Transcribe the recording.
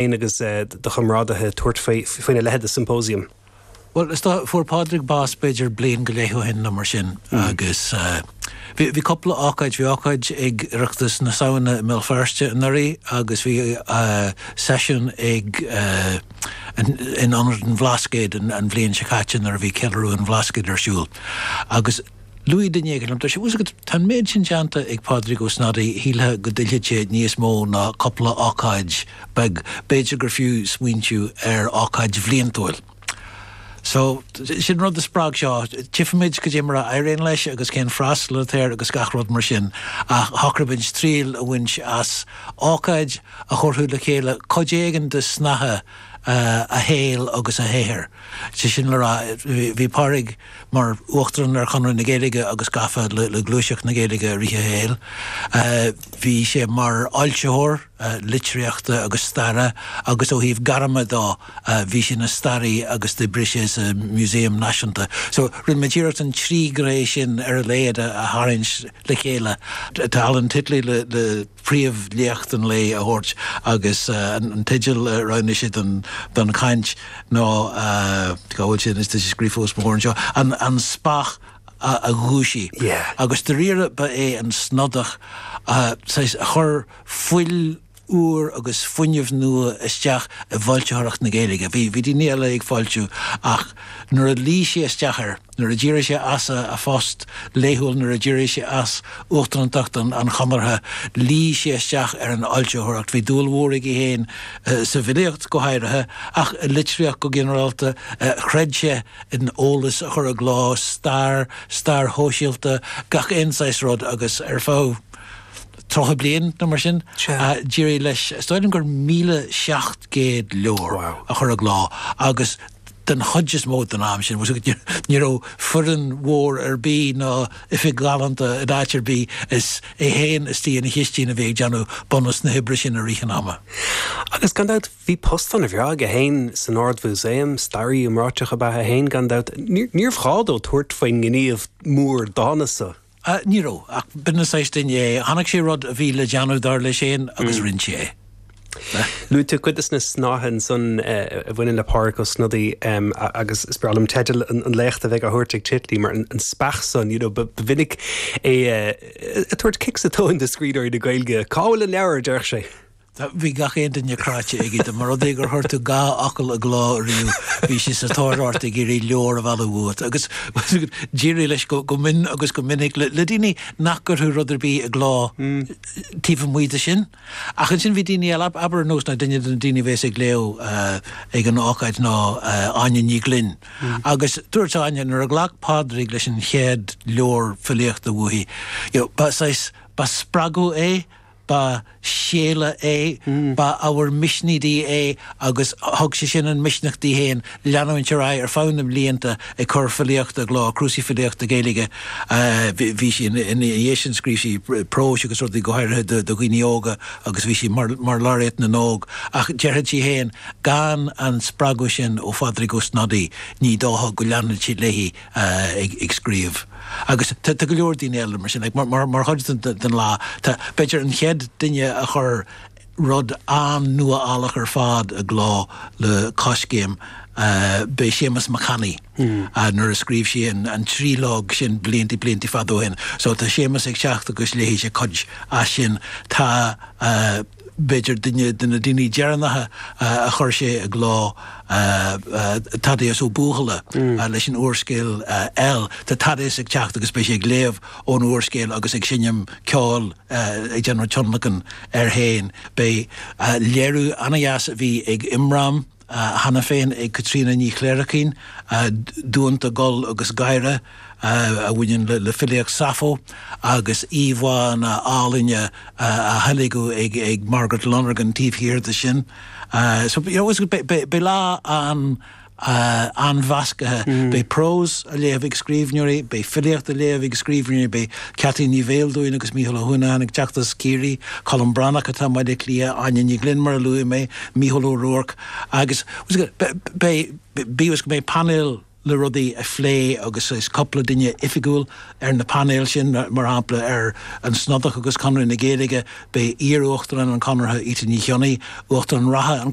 féin agus do chomrádaithe tabhairt faoina leitheid de symposium. Bhuel, is dócha, fuair Pádraig bás b'fhéidir bliain go leith ó shin nó mar sin agus bhí cúpla ócáid, bhí ócáid ag Oireachtas na Samhna i mBéal Feirste anuraidh agus bhí seisiún ag in Ionad an Bhlascaoid an bhliain seo caite nuair a bhí Ceiliúradh an Bhlascaoid ar siúl agus Luaigh duine éigin liom, dúirt sé, Ós go bhfuil an méid sin déanta ag Pádraig Ó Snodaigh, shílfeá go dtuillfeadh sé níos mó ná cúpla ócáid beag, b'fhéidir gur fiú smaointiú ar ócáid bhliantúil. So, sin an rud a spreag seo. Tífimid caidé mar a éiríonn leis agus cén freastal atá air agus gach rud mar sin. Ach shocraigh muid triail a bhaint as ócáid a thabharfadh le chéile cuid éigin de shnáithe a shaoil agus a shaothair. Sé sin le rá, bhí Pádraig. mar Uachtarán ar Chonradh na Gaeilge agus gafa le gluaiseacht na Gaeilge i rith a shaoil. Bhí sé mar fhoilsitheoir litríochta agus staire agus ó thaobh gairme dó bhí sé ina staraí agus d'oibrigh sé sa Museum Náisiúnta. So rinne muid iarracht an trí ghné sin ar a laghad a tharraingt le chéile. Tá Alan Titley le. príomhléacht an lae a thabhairt agus an teideal a roghnaigh sé don chaint ná, cá bhfuil sé anois tá sé scríofa os mo chomhair anseo, An Speach a Dhúisigh agus dairíre ba é an Snodaíoch a chuir fuil úr agus fuinneamh nua isteach i bhfoilsitheoireacht na Gaeilge. Bhí daoine eile ag foilsiú ach nuair a luigh sé isteach air, nuair a d'éirigh sé as a phost laethúil, nuair a d'éirigh sé as uachtarántacht an Chonartha, luigh sé isteach ar an fhoilsitheoireacht. Bhí dúil mhór aige féin sa bhfilíocht, go háirithe, ach i litríocht go ginearálta. Chreid sé in eolas a chur i gcló, stair, stair shóisialta, gach aon saghas rud, agus ar feadh tríocha bliain nó mar sin, d'éirigh leis, is dóigh liom gur míle seacht gcéad leabhar a chur i gcló, agus den chuid is mó den am sin, ní raibh foireann mhór ar bith ná oifig ghalánta in áit ar bith, is é féin istigh ina chistín a bhí ag déanamh bunús na hoibre sin i rith an ama. Agus gan dabht bhí post ana-bhreá aige féin san Ard-Mhúsaem, staraí iomráiteach ab ea é féin gan dabht, níorbh ghá dó tabhairt faoin ngníomh mór dána san. Ní raibh. Ach b'in an saghas duine é. Chonaic sé rud a bhí le déanamh, dar leis féin, agus rinn sé é. Luaigh tú cuid de na snáithe ansan a bhaineann le Pádraig Ó Snodaigh agus is breá liom teideal an léachta a bheidh á thabhairt ag Titley mar an speach san, you know, ba mhinic é ag tabhairt cic sa tóin do scríbhneoirí na Gaeilge. Cá bhfuil an leabhar, a déarfadh sé. Tá, bhí gach aon duine cráite aige de. Más rud é gur chuir tú dhá fhocal i gcló ariamh bhí sé sa tóir ort ag iarraidh leabhar a mhealladh uait. Agus d'éirigh leis go mion agus go minic le le daoine nach gcuirfeadh rud ar bith i gcló taobh amuigh de sin. Ach ansin bhí daoine eile, abair ar nós ná duine de na daoine a bhéas ag léamh ag an ócáid ná Áine Ní Ghlinn. Agus dúirt Áine nuair a ghlac Pádraig leis an chéad leabhar filíochta uaithi, you know, ba saghas, ba spreagadh é, Ba shéala é, ba ábhar misnigh di é agus thug sé sin an misneach di féin leanúint ar aghaidh ar feadh na mblianta ag cur filíochta i gcló, cnuasaigh filíochta Gaeilge. Bhí sí, ina dhiaidh sin scríobh sí próis agus rudaí go háirithe do dhaoine óga agus bhí sí mar Laureate na nÓg ach déarfadh sí féin, gan an spreagadh sin ó Phádraig Ó Snodaigh ní dócha go leanfadh sí léi. eh, ag scríobh agus tá go leor daoine eile mar sin, like mar, mar, mar chuid den lá tá, b'fhéidir an chéad duine a chuir rud an-nuálach ar fad i gcló le Coiscéim eh, b'é Séamas Mac Annaidh eh, nuair a scríobh sé an, an triológ sin blianta, blianta fada ó shin. So tá Séamas ag teacht agus léifidh sé cuid as sin. Tá eh. b'fhéidir duine de na daoine deireanacha a chuir sé i gcló, Thaddeus Ó Buachalla leis an úrscéal El. Tá Thaddeus ag teacht agus beidh sé ag léamh ón úrscéal agus ag seinm ceoil, ag déanamh tionlacan air féin. Beidh léiriú an-dheas a bhí ag Imram. cheana féin ag Caitríona Ní Chléirchín, Duanta, Gol agus Gáire, a bhaineann le filíocht Sappho, agus íomhánna álainne á theilgeadh ag Margaret Lonergan taobh thiar de sin. So you know beidh lá an-mheascaithe. Beidh prós á léamh ag scríbhneoirí, beidh filíocht á léamh ag scríbhneoirí, beidh Ceaití Ní Bheildiúin agus Mícheál Ó hUanacháin ag teacht as Ciarraí, Colm Breathnach atá i mBaile Átha Cliath, Áine Ní Ghlinn mar a luaigh mé, Mícheál Ó Ruairc agus beidh, bíodh is go mbeidh painéal le rudaí a phlé agus is cúpla duine oifigiúil ar na painéil sin, mar shampla ar An Snodach agus Conradh na Gaeilge, beidh iar-Uachtarán an Chonartha, Íte Ní Chionnaith, Uachtarán reatha an.